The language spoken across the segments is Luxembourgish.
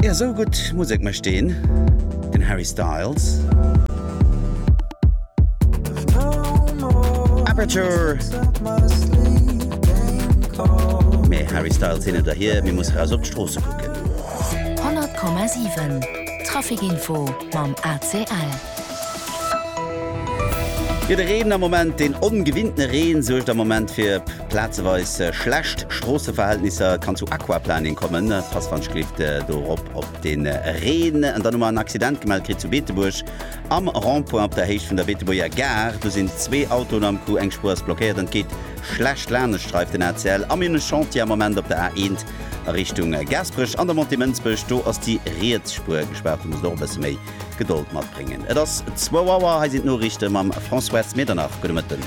Jo sou gudd Musek mecht deen den Harry Styles. Aperture Mee Harry Styles hin oder hier mir muss raus op d'Stroosse kucken. 100,7 Trafic Info mam ACL. Jo de Reen am Moment, deen ongewinnten Reen suergt am Moment fir plazeweis schlecht Stroosseverhältnisser. Kann zu Aquaplaning kommen, Passwandschrift dorop op de Reen. An dann hu mer en Accident gemellt kritt zu Beetebuerg am Rond-point op der Héicht vun der Beetebuerger Gare. Do sinn zwee Autoen am Coup, eng Spuer ass blockéiert an et geet schlecht laanescht Streif den ACL. A mir hunn e Chantier am Moment op der A 1 a Richtung Gaasperech an der Montée Mënsbech, do ass déi riets Spuer gespaart. Do muss et och e bësse méi Gedold matbréngen. Et ass zwou Auer. Hei sinn d'Noriichte mam Françoise Medernach. Gudde Mëtten.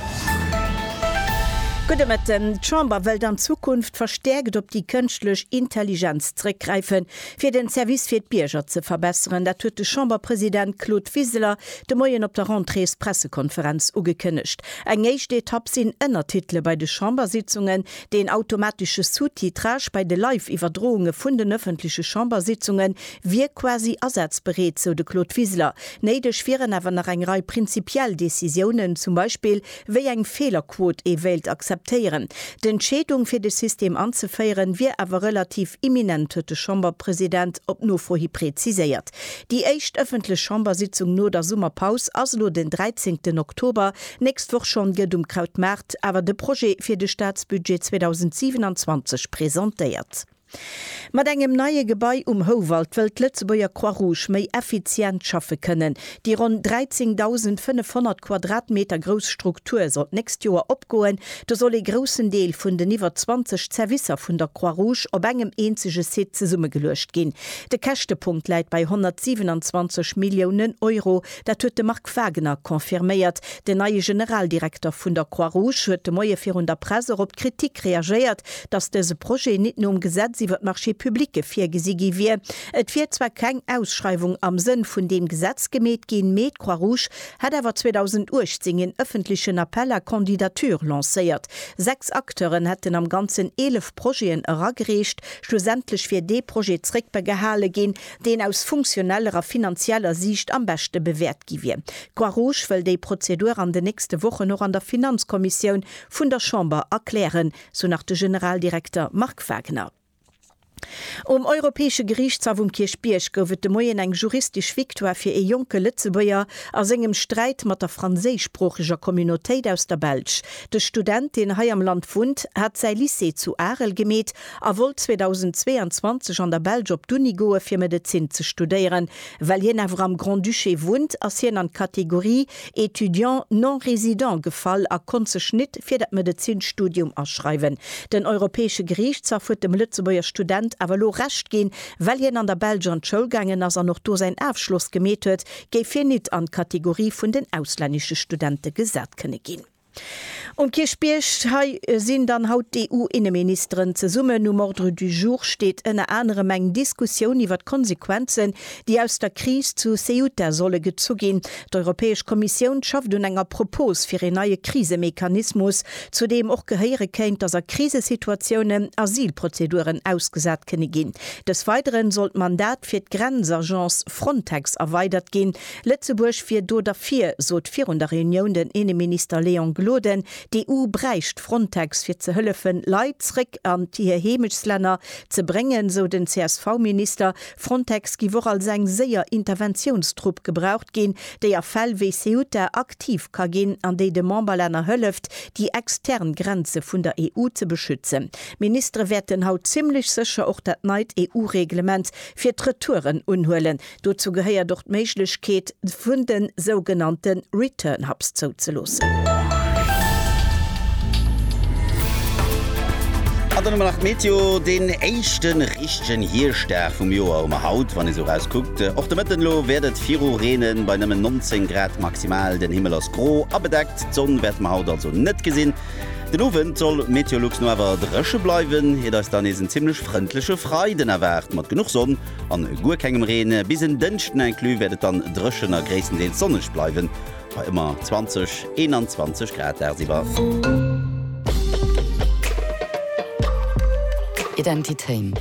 Gudde Mëtten. D'Chamber wëllt an Zukunft verstäerkt op déi kënschtlech Intelligenz zréckgräifen, fir den Service fir d'Bierger ze verbesseren. Dat huet de Chamberpresident Claude Wiseler de Moien op der Rentréespressekonferenz ugekënnegt. Eng éischt Etapp sinn Ënnertitele bei de Chambersitzungen, deen automatesche Sous-titrage bei de Live-Iwwerdrounge vun den ëffentleche Chambersitzungen, wier quasi asazbereet, sou de Claude Wiseler. Néideg wieren awer nach eng Rei prinzipiell Decisiounen, zum Beispill wéi eng Feelerquot ee wéilt akzeptéieren. D'Entscheedung fir de System anzeféieren, wier awer relativ imminent, huet de Chamberpresident op Nofro hi präziséiert. Déi éischt ëffentlech Chambersitzung no der Summerpaus ass elo den 13 Oktober. Nächst Woch schonn gëtt um Krautmaart awer de Projet fir de Staatsbudget 2027 presentéiert. Mat engem neie Gebai um Houwald wëll d'Lëtzebuerger Croix-Rouge méi effizient schaffe kënnen. Déi ronn 13.500 Quadratmeter grouss Struktur soll d'nächst Joer opgoen. Do soll ee groussen Deel vun den iwwer 20 Zerwisser vun der Croix-Rouge op engem eenzege Site zesummegeluecht ginn. De Käschtepunkt läit bei 127 Milliounen Euro, Dat huet de Marc Wagener confirméiert. Den neie Generaldirekter vun der Croix-Rouge huet de Moie virun der Press och op d'Kritik reagéiert, datt dëse Projet nit nom Gesetz iwwer d'Marchés publique virgesi gi wier. Et wier zwar keng Ausschreiwung am Sënn vun deem Gesetz gemeet ginn, mee d'Croix-Rouge hätt awer 2018 een ëffentlechen Appel à candidatures lancéiert. Sechs Acteuren hätten am Ganzen eelef Projeten eragereecht. Schlussendlech wier dee Projet zréckbegehale ginn, deen aus funktioneller a finanzieller Siicht am beschte bewäert gi wier. D'Croix-Rouge wëll déi Prozedur an den nächste Wochen och an der Finanzkommissioun vun der Chamber erklären, sou nach de Generaldirekter Marc Wagner. Um Europäesche Geriichtshaff um Kierchbierg gouf et de Moien eng juristesch Victoire fir ee jonke Lëtzebuerger a sengem Sträit mat der franséischsproocheger Communautéit aus der Belsch. De Student, deen hei am Land wunnt, hat säi Lycée zu Arel gemeet a wollt 2022 an der Belsch op d'Uni goe fir Medezin ze studéieren. Well hien awer am Grand-Duché wunnt, ass hien an d'Kategorie Étudiant non résident gefall a konnt sech nit fir dat Medezinstudium aschreiwen. Den Europäesche Geriichtshaff huet dem Lëtzebuerger Student awer elo Recht ginn. Well hien an der Belsch an d'Schoul gaangen ass an och do säin Afschloss gemeet huet, géif hien nit an d'Kategorie vun den auslännesche Studente gesat kënne ginn. Um Kierchbierg, hei sinn dann haut d'EU-Inneministeren zesummen. Um Ordre du jour steet ënner anerem eng Diskussioun iwwer d'Konsequenzen, déi aus der Kris zu Ceuta solle gezu ginn. D'Europäesch Kommissioun schafft un enger Propos fir een neie Krisemechanismus, zu deem och gehéiere kéint, datt a Krisesituatiounen Asylprozeduren ausgesat kënne ginn. Des Weidere soll d'Mandat fir d'Grenzagence Frontex erweidert ginn, Lëtzebuerg wier do derfir, sot virun der Reunioun den Inneminister Léon Gloden. D'EU bräicht Frontex fir ze hëllefen, Leit zréck an hir Heemechtslänner ze bréngen, sou den CSV-Minister. Frontex giff och als eng séier Interventiounstrupp gebraucht ginn, déi a Fäll wéi Ceuta aktiv ka ginn an déi de Memberlänner hëlleft, déi extern Grenze vun der EU ze beschützen. D'Ministere wäerten haut zimmlech sécher och dat neit EU-Reglement fir d'Retouren unhuelen. Dozou gehéiert och d'Méiglechkeet vun de sougenannte Return Hubs zouzeloossen. An dann hu mer nach d'Meteo. Deen éischte richtegen Hierschtdag vum Joer hu mer haut, wann ee sou erauskuckt. Och de Mëtten elo wäert et viru reenen, bei nëmmen 19 Grad maximal. Den Himmel ass gro a bedeckt, d'Sonn wäerte mer haut also net gesinn. Den Owend soll Meteolux no awer dréche bleiwen, iert eis dann nees en zimmlech frëndleche Freiden erwaart, mat genuch Sonn. An guer kengem Reen. Bis en Dënschden inclus wäert et dann dréchen a gréisstendeels sonneg bleiwen, bei ëmmer 20, 21 Grad dagsiwwer. Identitéin,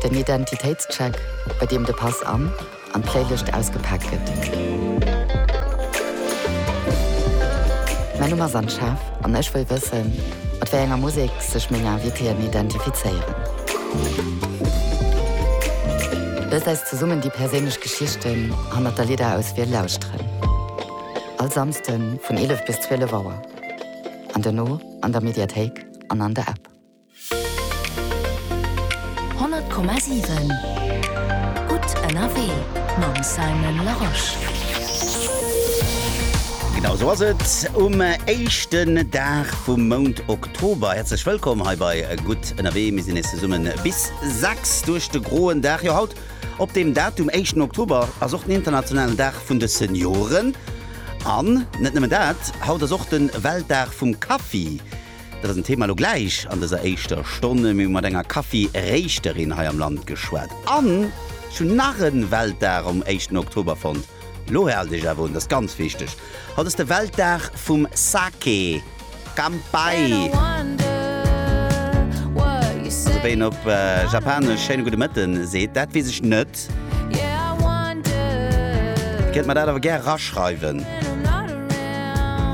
den Identitéitscheck, bei deem de Pass an an d'Fléilëscht ausgepaakt gëtt. Mäin Numm ass Anne Schaaf an ech wëll wëssen, mat wéi enger Musek sech meng Invitéen identifizéieren. Looss eis zesummen déi perséinlech Geschichten hannert der Lidderauswiel lauschteren. All Samsden vun 11 bis 12 Auer an dono an der Mediathéik an an der App. 100,7 Gutt ënnerwee mam Simon Larosche. Genau sou ass et um éischten Dag vum Mount Oktober. Tober, häerzlech wëllkomm hei bei Gutt ënnerwee. Mir sinn nees zesummen bis 6 duerch de groen Dag. Jo, haut op deem Datum, éischten Oktober, ass och den internationalen Dag vun de Senioren. An net nëmmen dat, haut ass och de Weltdag vum Kaffi. Dat ass en Thema elo gläich an dëser éischter Stonn. Mir hu mat enger Kaffi-Réischterin hei am Land geschwat. An ech hunn nach e Weltdag um éischten Oktober fonnt. Lo haal dech awer un, dat ass ganz wichteg. Haut ass de Weltdag vum Sake. Kanpai! Also wéi een op Japanesch schéine gudde Mëtten seet, dat weess ech net. Kënnt mer dat awer gär raschreiwen.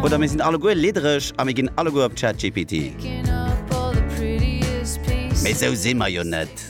Oder mir sinn alleguer liddereg a mir ginn alleguer op ChatGPT. Mee esou si mer jo net.